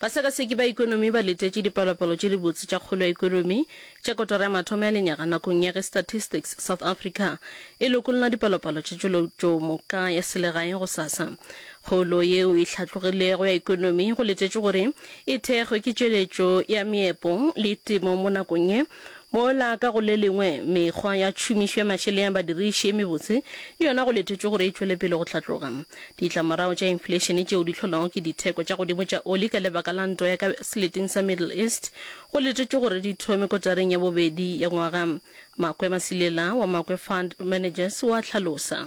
Basekaseki ba ekonomi ba letetše dipalopalo tše dibotse tša kgolo ya ekonomi tša kotara ya mathomo ya lenyaga nakong ya ge Statistics South Africa e lokolla dipalopalo tša tšweletšo moka ya selegae gosasa. Kgolo yeo e hlatlogilego ya ekonomi go letetšwe gore e thekgwe ke tšweletšo ya meepo le temo mo nakong ye Mola ka go le lengwe, mekgwa ya tšhomišo ya mašeleng ya badiriši e mebotse le yona go letetšwe gore e tšwele pele go hlatloga. Ditlamorago tša infleišene tšeo di hlolwago ke ditheko tša godimo tša oli ka lebaka la ntwa ya ka seleteng sa Middle East go letetšwe gore di thome kotareng ya bobedi ya ngwaga, Makwe Masilela wa Makwe Fund Managers o a hlalosa.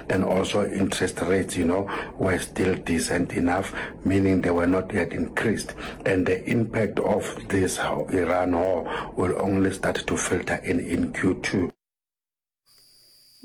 and also interest rates, you know, were still decent enough, meaning they were not yet increased. And the impact of this Iran war will only start to filter in in Q2.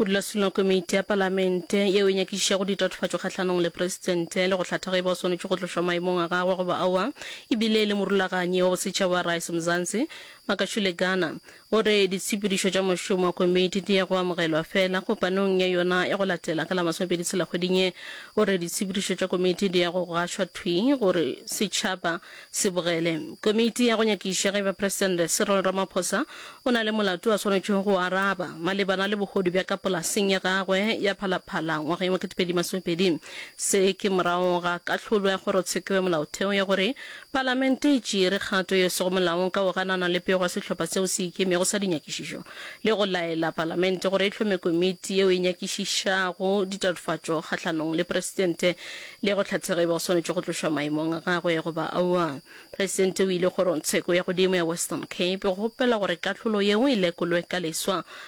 modulasetulo komiti ya palamente yeo e nyakišišago ditatofatšo kgahlanong le presidente le go hlatha ge e ba o swanetše go tlošwa maemong a gagwe goba aowa e bile e le morulaganyi wa bosetšhaba wa rice mzansi makashule ghana O re ditshepedišo tša mošomo wa komiti di ya go amogelwa fela kopanong ya yona ya go latela ka la masomepedi tshela kgweding ye. O re ditshepedišo tša komiti di ya go gašwa thwi gore setšhaba se bogele. Komiti ya go nyakiša ge ba Presidente Cyril Ramaphosa o na le molato a swanetšego go o araba malebana le bohodu bja ka polaseng ya gagwe ya Phalaphala ngwageng wa ketepedi masomepedi. Se ke morago ga kahlolo ya kgorotsheko ya molaotheo ya gore Palamente e tšere kgato e sego molaong ka go ganana le pego ya sehlopha seo se ikemego sa dinyakišišo le go laela Palamente gore e hlome komiti yeo e nyakišišago ditatofatšo kgahlanong le Presidente le go hlatha ge e ba o swanetše go tlošwa maemong a gagwe goba aowa. Presidente o ile Kgorongtsheko ya Godimo ya Western Cape go kgopela gore kahlolo yeo e lekolwe ka leswa